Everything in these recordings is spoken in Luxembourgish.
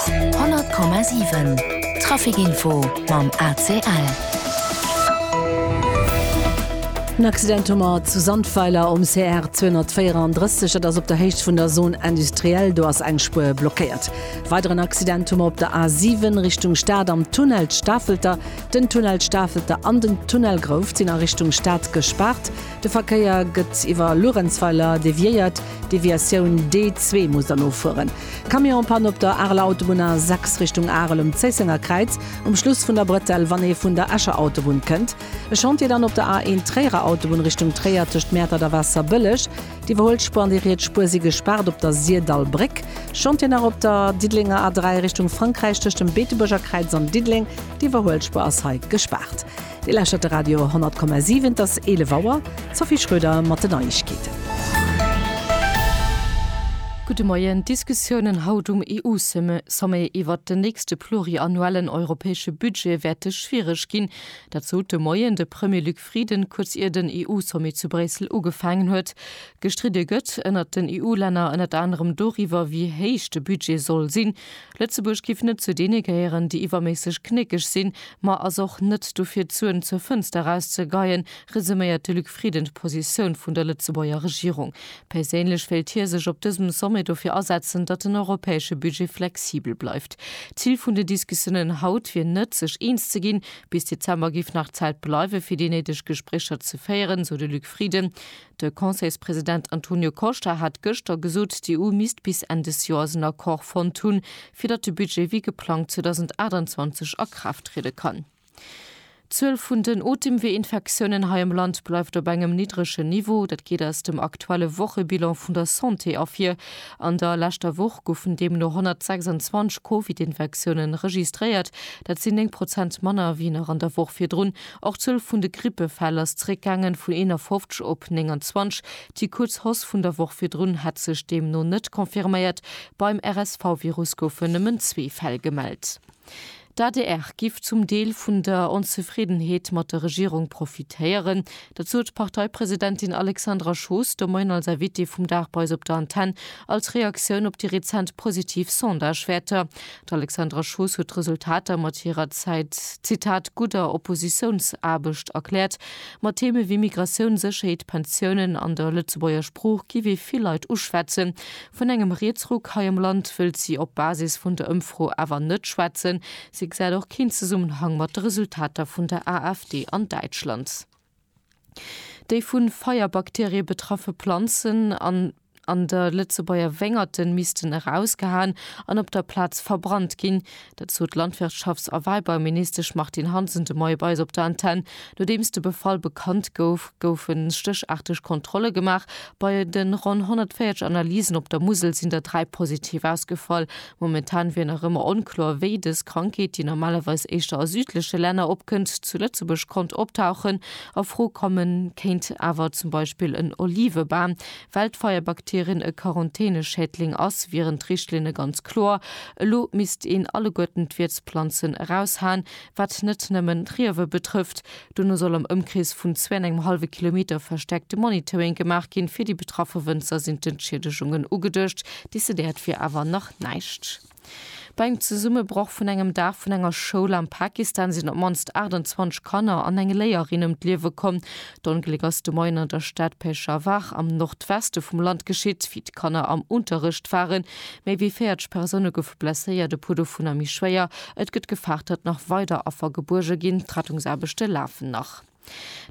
100,7 Trafic Info mam ACL. En Accident hu mer zu Sandweiler um CR 234, dat ass op der Héicht vun der Zone industrielle. Do ass eng Spuer blockéiert. Weideren Accident hu mer op der A7 Richtung Stad am Tunnel d'Stafelter. Den Tunnel d'Stafelter an den Tunnel Grouft sinn a Richtung Stad gespaart. De Verkéier gëtt iwwer Luerenzweiler deviéiert, d'Deviatioun D2 muss dann offueren. Camionspann op der Areler Autobunn A6 Richtung Arel um Zéissenger Kräiz, um Schluss vun der Bretelle wann ee vun der Escher Autobunn kënnt. E Chantier dann op der A1 Tréierer Autobunn Richtung Tréier tëscht Mäertert a Waasserbëlleg. D'Iwwerhuel Spuer an déi riets Spuer si gespaart op der Sirdall Bréck. Chantier nach op der Diddelenger A3 Richtung Frankräich tëscht dem Beetebuerger Kräiz an Diddeleng, d'Iwwerhuel Spuer ass hei gespaart. Dir lauschtert de Radio 10,7, et ass 11 Auer. D'Sophie Schröder mat den Neiegkeeten. Gudde Moien. D'Diskussiounen haut um EU-Sommet iwwert den nächste pluriannuellen europäesche Budget wäerte schwiereg ginn. Dat sot de Moien de Premier Luc Frieden, kuerz ier den EU-Sommet zu Bréissel ugefaangen huet. Gestridde gëtt ënnert den EU-Länner ënnert anerem doriwwer, wéi héich de Budget soll sinn. Lëtzebuerg giff net zu deene gehéieren, déi iwwerméisseg knéckeg sinn, ma ass och net dofir d'Suen zur Fënster eraus ze geien, resuméiert de Luc Frieden d'Positioun vun der Lëtzebuerger Regierung. Perséinlech wéilt hie sech op dësem Sommet dofir asetzen, datt den europäesche Budget flexibel bleift. Zil vun den Diskussiounen haut wier net, sech eens ze ginn. Bis Dezember giff nach Zäit bleiwen, fir déi néideg Gespréicher ze féieren, sou de Luc Frieden. De Conseilspresident Antonio Costa hat gëschter gesot, d'EU misst bis Enn des Joers en Accord fonnt hunn, fir datt de Budget wéi geplangt 2028 a Kraaft triede kann. D'Zuel vun den Otemweeinfektiounen hei am Land bleift op engem niddregen Niveau. Dat geet aus dem aktuelle Wochebilan vun der Santé ervir. An der leschter Woch goufen deemno 126 Covid-Infektiounen registréiert. Dat sinn 9 Prozent manner wéi nach an der Woch virdrun. Och d'Zuel vun de Grippefäll ass zeréckgaangen, vun 51 op 29. Déi kuerz Hausse vun der Woch virdrun hätt sech deemno net confirméiert. Beim RSV-Virus goufen nëmmen zwee Fäll gemellt. D'adr giff zum Deel vun der Onzefriddenheet mat der Regierung profitéieren. Dat sot d'Parteipresidentin Alexandra Schoos de Moien als Invitée vum Dag bei eis op der Antenn, als Reaktioun op déi rezent positiv Sondagewäerter. D'Alexandra Schoos huet d'Resultater mat hirer Zäit, Zitat, gudder Oppositiounsaarbecht erkläert. Ma Theeme wéi Migratioun, Sécherheet, Pensiounen an der Lëtzebuerger Sprooch giff ee vill Leit uschwätzen. Vun engem Rietsruck hei am Land wëllt si op Basis vun der Ëmfro awer net schwätzen. Si gesäit och keen Zesummenhang mat de Resultater vun der AfD an Däitschland. Déi vu Feierbakterie betraffe Planzen an an de Lëtzebuerger Wéngerte missten erausgehaen an op der Plaz verbrannt ginn. Dat sot d'Landwirtschafts a Wäibauministesch Martine Hansen de Moie bei eis op der Antenn. Nodeems de Befall bekannt gouf, goufe stécharteg Kontrolle gemaach. Bei de ronn 140 Analysen op der Musel sinn der dräi positiv ausgefall. Momentan wier nach ëmmer onkloer, wéi dës Krankheet, déi normalerweis éischter a südleche Länner opkënnt, zu Lëtzebuerg konnt optauchen. A Fro komme kéint awer zum Beispill en Olivebam. Well d'Feierbakterien e Quarantäneschädling ass, wieren d'Richtlinne ganz kloer. Elo misst een alleguerten d'Wiertsplanzen eraushaen, wat net nëmmen d'Riewe betrëfft. Dono soll am Ëmkrees vun zwee an engem hallwe Kilometer verstäerkte Monitoring gemaach ginn. Fir déi betraffe Wënzer sinn d'Entschiedegungen ugeduecht. Decidéiert wier awer nach näischt. Bei engem Zesummebroch vun engem Daach vun enger Schoul am Pakistan sinn op d'mannst 28 Kanner an eng Léierin ëm d'Liewe komm. D'Ongléck ass de Moien an der Stad Peshawar am Nordweste vum Land geschitt. Wéi d'Kanner am Unterrecht waren, Méi wéi 40 Persoune goufe blesséiert, e puer dovunner méi schwéier. Et gëtt gefaart, datt nach weider Affer gebuerge ginn. D'Rettungsaarbechte lafen nach.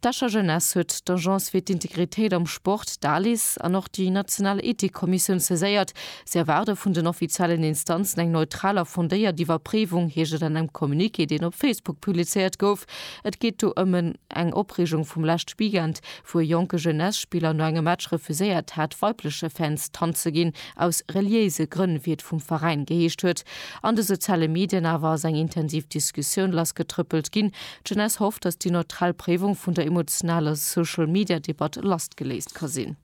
D'Escher Jeunesse huet d'Agence fir d'Integritéit am Sport, d'ALIS, an och déi national Ethikkommissioun saiséiert. Si erwaarde vun den offiziellen Instanzen eng neutral a fondéiert Iwwerpréiwung, heescht et an engem Communiqué, deen op Facebook publizéiert gouf. Et geet do ëm en eng Opreegung vum leschte Weekend, wou e jonke Jeunesse-Spiller no engem Match refuséiert hat, weibleche Fans d'Hand ze ginn, aus reliéise Grënn, wéi et vum Veräin geheescht huet. An de soziale Medien awer ass eng intensiv Diskussioun lassgetrëppelt ginn. D'Jeunesse hofft, datt déi neutral Préiwung vun der emotionaler Social-Media-Debatt lassgeléist ka sinn.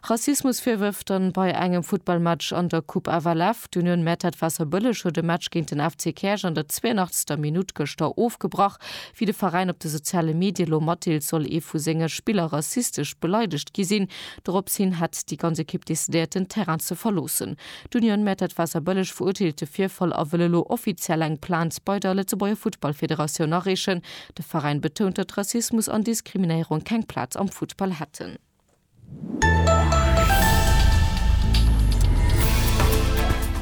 Rassismusvirwërf dann bei engem Futtballmatch an der Coupe FLF. D'Union Mertert Waasserbëlleg huet e Match géint den FC Käerch an der 82. Minutt gëschter ofgebrach, wéi de Veräin op de soziale Medie lo matdeelt, soll ee vu senge Spiller rassistesch beleidegt gi sinn. Dorops hin hätt déi ganz Ekipp decidéiert, den Terrain ze verloossen. D'Union Mertert Waasserbëlleg verurteelt de Virfall a wëll elo offiziell eng Plainte bei der Lëtzebuerger Futtballfederatioun areechen. De Veräin betount, datt Rassismus an Diskriminéierung keng Plaz am Futtball hätten.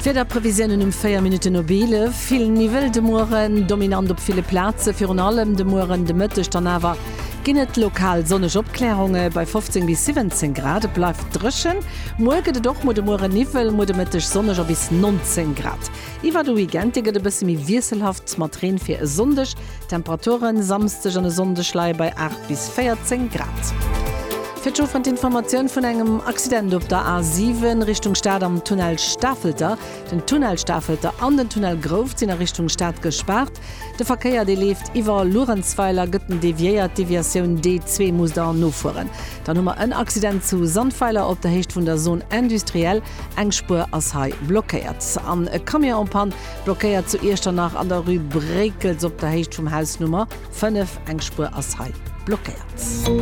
D'Wiederprevisiounen um 4 Minutten op 11, Vill Niwwel de Mueren, dominant op ville Plaze, virun allem de Mueren, de Mëtteg dann awer ginn et lokal sonneg Opklärunge bei 15 bis 17 Grad. Et bleift dréchen, muer gëtt et och mol de Mueren Niwwel, muer de Mëtteg sonneg a bis 19 Grad. Iwwer de Weekend, dee gëtt e bësse méi wiesselhaft mat Reen fir e Sonndeg. D'Temperature Samsdeg an e Sonndeg leie bei 8 bis 14 Grad. Fir d'Chaufferen d'Informatioun vun engem Accident op der A7 Richtung Stad am Tunnel Stafelter. Den Tunnel Stafelter an den Tunnel Grouft sinn a Richtung Stad gespaart. De Verkéier, dee leeft iwwer Luerenzweiler, gëtt en deviéiert. D'Deviatioun D2 muss der nofueren. Dann hu mer en Accident zu Sandweiler op der Héicht vun der Zone industrielle. Eng Spuer ass hei blockéiert an e Camion en Panne. Blockéiert zu Iechternach an der Rue Bréckels op der Héicht vum Haus Nummer 5. Eng Spuer ass hei blockéiert.